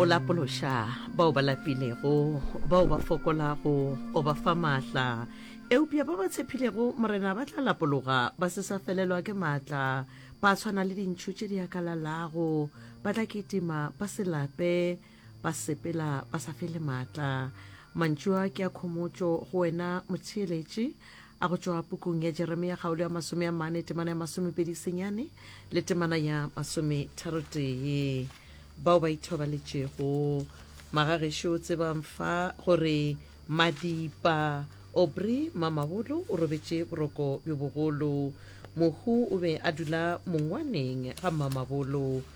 o lapološa bao ba lapilego bao ba fokolago o ba fa maatla eupša ba ba tshepilego morena ba tla lapologa ba se sa felelwa ke maatla ba swana le dintšhu tše di akalalago ba tla kitima ba se lape Ba sepela ba sa fele maatla. Mantšu a ke a khomotšo go wena, motheeletši, a go tšwa pukung ya Jeremia kgaolo ya masome a mane, temana ya masomepedi senyane le temana ya masometharotee. Bao ba ithobaletšego, magagešo, tsebang fa gore Madipa, Obri, Mamabolo, o robetše boroko bjo bogolo. Mohu o be a dula mongwaneng ga Mamabolo.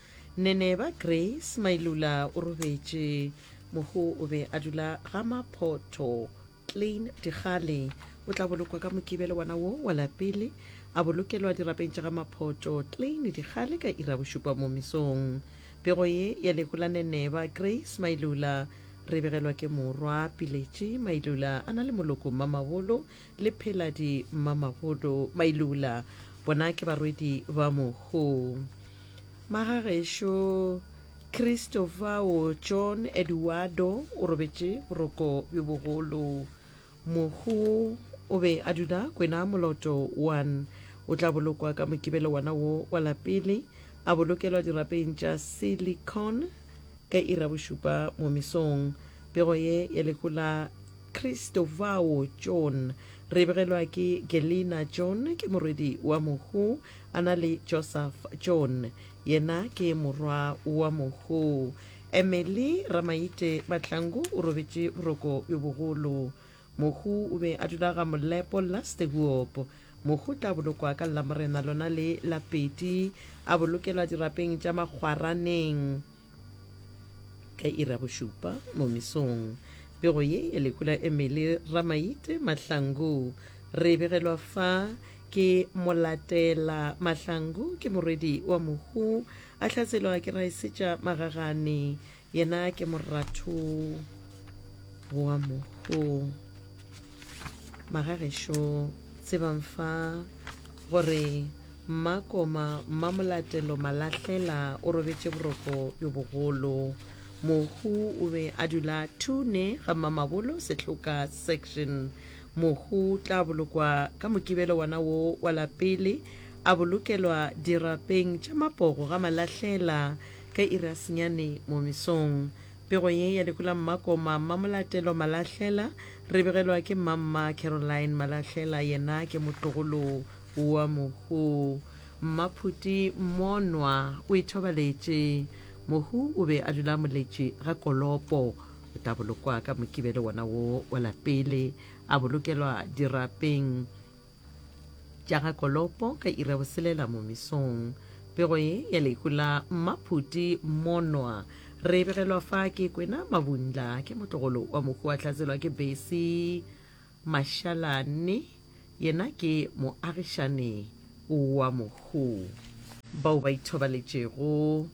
Neneba Grace Mailula o robetše mohu o be a dula ga Maphotho Klein Dikgale. O tla bolokwa ka Mokibelo wa na wo wa lapele a bolokelwa dirapeng tša ga Maphotho Klein Dikgale ka iri ya bošupa mo mesong. Pego ye ya lehu la Neneba Grace Mailula re begelwa ke morwa Piletše Mailula a na le moloko Mmamabolo le Pheladi Mmamabolo Mailula bona ke barwedi ba mohu. Magagešo Christopher wo John Eduardo o robetše boroko bjo bogolo. Mohu o be a dula kwena moloto 1. O tla bolokwa ka mokibelo wana wo wa lapele, a bolokelwa dirapeng tša silicon ka iri ya bošupa mo mesong. Pego ye ya lehu la Christopher wo John re e begelwa ke Gelina John, ke morwedi wa mohu. a na le joseph john yena ke morwa wa mohu emily ramaite batlangu o robetše boroko bjo bogolo mohu o be a dula ga molepo lastehuop mohu tla bolokwa ka lamorena lona le la pedi a bolokelwa dirapeng tša makgwaraneng ka ira bošupa mo mesong pego ye ya lehu la emily ramaite mahlangu re begelwa fa ke molatela mahlangu ke morwedi wa mohu a hlaselwa ke raesetša magagane yena ke moratho wa mohu Magagešo tsebang fa gore mmakoma mmamolatelo malahlela o robetše boroko bjo bogolo mohu o be a dula tune ga mmamabolo sehloka section mohu tla bolokwa ka mokibelo wana wo wa lapele a bolokelwa dirapeng tša mapogo ga malahlela ka irasenyane mo mesong Pego ye ya Lekola Mmakoma Mmamolatelo Malahlela re begelwa ke Mmamma Caroline Malahlela yena ke motlogolo wa Mohu Mmaphuti Monwa o ithobaletše Mohu o be a dula moletši ga Kolopo o tla bolokwa ka Mokibelo wona wo wa lapele a bolokelwa dirapeng tša ga Kolopo ka iri ya boselela mo mesong. Pego ye ya lehu la Mmaphuti Monwa re e begelwa fa ke Kwena Mabundla ke motlogolo wa mohu wa Tlatselwa ke Besi Mashalane, yena ke moagišane wa mohu. Bao ba ithobaletšego,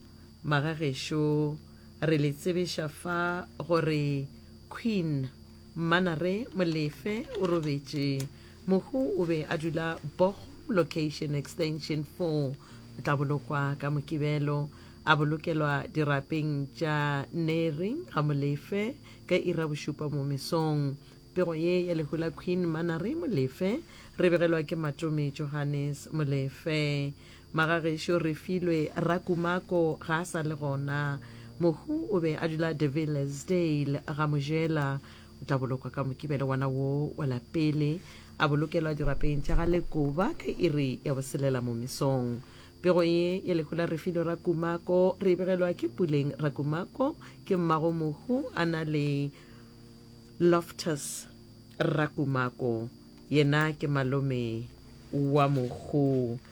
magagešo re le tsebiša fa gore Queen Mmanare Molefe o robetše. Mohu o be a dula Bokgo Location Extension 4. O tla bolokwa ka Mokibelo, a bolokelwa dirapeng tša Neri ga Molefe ka iri ya bošupa mo mesong. Pego ye ya lehu la Queen Mmanare Molefe re begelwa ke Matome Johannes Molefe. Magagešo Refilwe Rakumako ga a sa le gona. Mohu o be a dula De Villiers Dale, Gamojela. O tla bolokwa ka Mokibelo wa na woo wa la pele, a bolokelwa dirapeng tša ga Lekoba ka iri ya boselela mo mesong. Pego ye ya lehu la Refilwe Rakumako re e begelwa ke Puleng Rakumako, ke mmago mohu a na le Loftus Rakumako, yena ke malome wa mohu.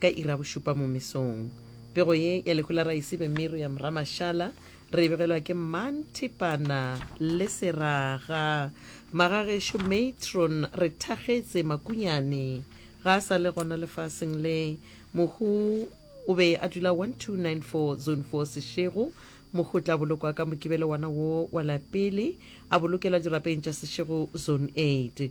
Ka iri ya bošupa mo mesong, pego ye ya lehu la raese be meru ya Mramašala re e begelwa ke Mmanthipana le Seraga. Magagešo Matron re thakgetse Makunyane ga a sa le gona lefaseng le. Mohu o be a dula 1294 Zone 4 Sešego. Mohu o tla bolokwa ka mokibelo wana wo wa lapele, a bolokelwa dirapeng tša Sešego Zone 8.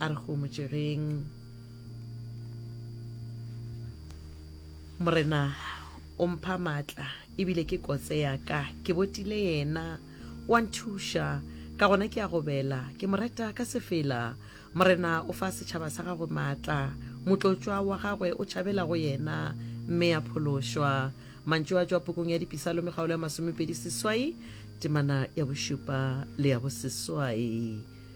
A re homotšegeng. Morena o mpha maatla ebile ke kotse ya ka. Ke botile yena, o a nthuša, ka gona ke a gobela. Ke mo reta ka sefela. Morena o fa setšhaba sa gagwe maatla. Motlotšwa wa gagwe o tšhabela go yena, mme a phološwa. Mantšu a tšwa pukung ya Dipisalome kgaolo ya masomepedi seswai, temana ya bošupa le ya boseswai.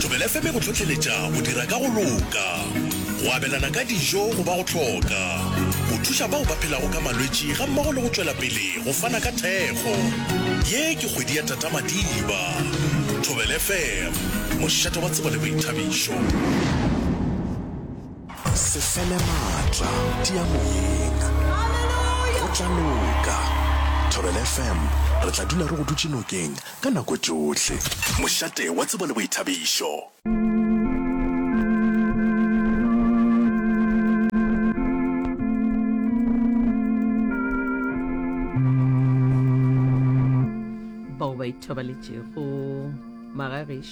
Thobela FM e go hlohleletša go dira ka go loka, go abelana ka dijo go ba go hloka, go thuša bao ba phelago ka malwetši gammogo le go tšwela pele go fana ka thekgo. Ye ke kgwedi ya Tata Madiba. Thobela FM, mošate wa tsebo le boithabišo. Se fele maatla, tia moyeng. Go tla loka. Thobela FM, re tla dula re go dutše nokeng ka nako tšohle. Mošate wa tsebo le boithabišo. Bao ba ithobaletšego magagešo.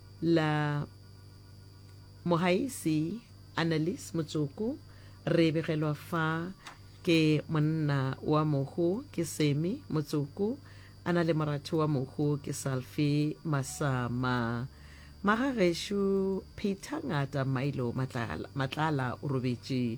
la Mogaisi Annelies Motsoko re begelwa fa ke monna wa mohu ke Semi Motsoko a na le moratho wa mohu ke Salfi Masama. Magagešo Peter Ngata Milo Matlala o robetše.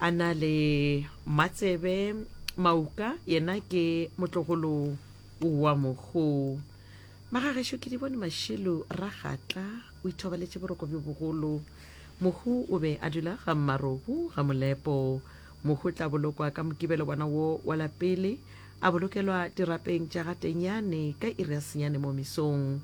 A na le matsebe mauka, yena ke motlogolo wa mohu. Magagešo ke di bone mašelu ragatla o ithobaletše boroko bjo bogolo. Mohu o be a dula ga mmarobu ga molepo. Mohu tla bolokwa ka mokibelo bona wo wa lapele, a bolokelwa dirapeng tša ga tenyane ka iri ya senyane mo mesong.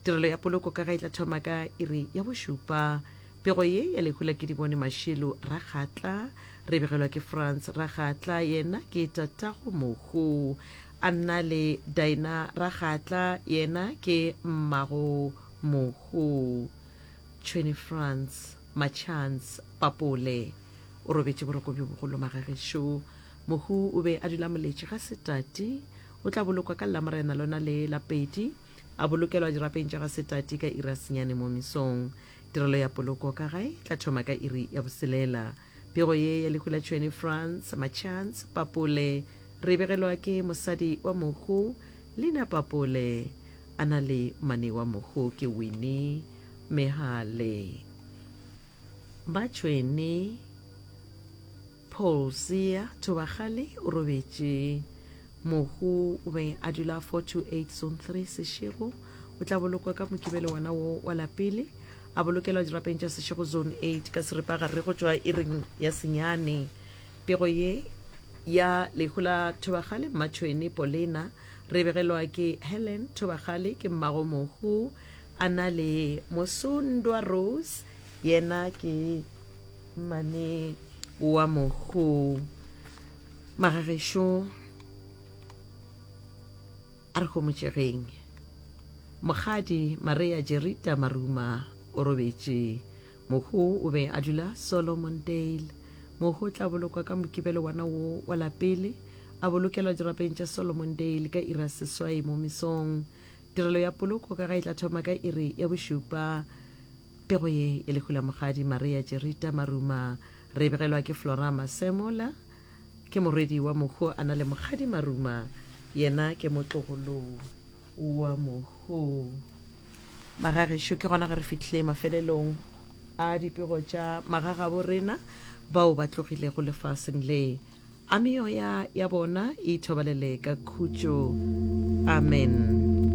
Tirelo ya poloko ka ga e tla thoma ka iri ya bošupa. Pego ye ya lehu la Kedibone Mashelu Rakgatla re begelwa ke Franz Rakgatla, yena ke tatago mohu, a nna le Daina Rakgatla, yena ke mmago mohu. Tšhwene Franz Machance Papole o robetše boroko bjo bogolo magagešo. Mohu o be a dula moletše ga se tate. O tla bolokwa ka Lamorena lona le la pedi. A bolokelwa dirapeng tša ga Setati ka iri ya senyane mo mesong. Tirelo ya poloko ka gae e tla thoma ka iri ya boselela. Pego ye ya lehu la tšhwene France, Machance Papole, re e begelwa ke mosadi wa mohu Lina Papole. A na le mmane wa mohu ke Winnie Mehale. Ba tšhwene. Paul Siya Thobakgale o robetše. Mohu o be a dula 428 Zone 3 Seshego. O tla bolokwa ka Mokibelo wona wo wa lapele, a bolokelwa dirapeng tša Seshego Zone 8 ka seripagare go tšwa iring ya senyane. Pego ye ya lehu la Thobakgale Mmatšhwene Polena re begelwa ke Helen Thobakgale ke mmago mohu, a na le Mosundwa Rose yena ke. Mane wa mogo magagešo a re gomotšegeng mokgadi Maria Jerita Maruma o robetše. Mogo o be a dula Solomon Dale. Mogo o tla bolokwa ka Mokibelo wana wo wa lapele, a bolokelwa dirapeng tša Solomon Dale ka iri ya seswai mo mesong. Tirelo ya poloko ka ga e tla thoma ka iri ya bošupa Pego ye e lehula Mogadi Maria Jerita Maruma re e begelwa ke Florama Semola. Ke morwedi wa Mohu a na le Mogadi Maruma, yena ke motlogolo wa Mohu. Magagešo, ke gona ge re fihlile mafelelong a dipego tša magagabo rena bao ba tlogilego lefaseng le, a meoya ya bona e ithobalele ka khutšo. Amen.